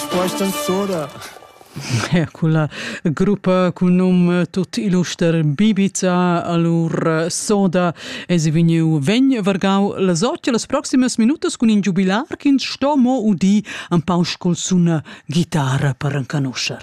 Questa sora Con la gruppa con num tut illuster Bibica allora soda es vegniu vegn vargau las otg las proximas minutas cun in giubilar ch'ins sto mo udi un pau col suna guitarra per encanuscher.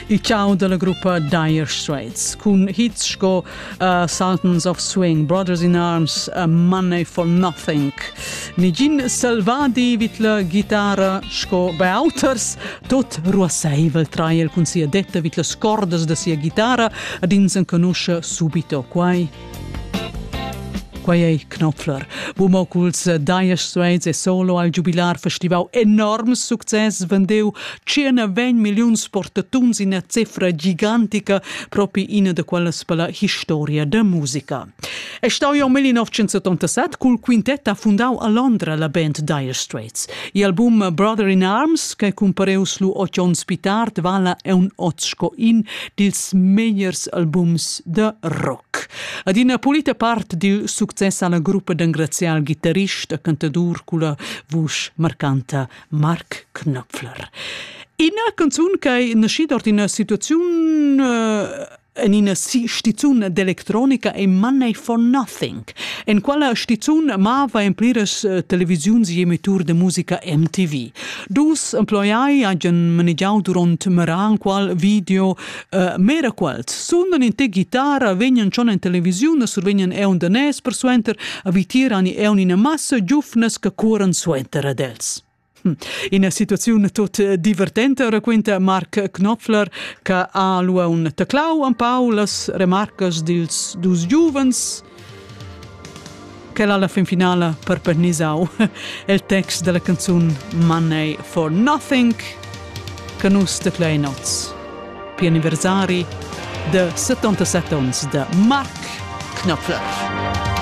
Il ciao della gruppa Dire Straits cun hits sco uh, Sultans of Swing, Brothers in Arms, uh, Money for Nothing. Nigin selvadi vid la ghitara sco bei auters, tot ruasseivel trai el cun sia detta vid las cordas da sia ghitara ad ins enconusce subito quai Quei ei Knopfler. Bumo culs Daies Suez e solo al giubilar festivau enorm success vendeu 120 milliuns portatuns ina cifra gigantica propi ina da quellas per la historia da musica. E stau jau 1987 cul quintet ha fundau a Londra la band Dire Straits. Il album Brother in Arms, che cumpareus lu oz onns pli tard, vala un oz sco in dils megliers albums da rock. Ad ina pulita part dil success alla gruppa d'engraziar al gitarrist e cantadur culla vusch marcanta Mark Knopfler. Ina canzun che è nascida ord ina situazione uh, en ina stizun d'elettronica e Money for Nothing, En quella stizun mava en pliras eh, televisiuns e emitur de musica MTV. Dus emploiai hagen manegiau duront meran qual video uh, mera quels. Sunden in te guitarra vegnan schon en televisiun, survegnan eun de nes per suenter, avitiran e eun in massa giufnes che curan suenter ad els. Ina situaziun tut divertenta, raquinta Marc Knopfler, che ha lua un teclau en pau las remarcas dils dus giuvens quel alla fin finala per pernisau il text della canzun Money for Nothing che nus te play notes pi anniversari de 77 ons de Marc Knopfler.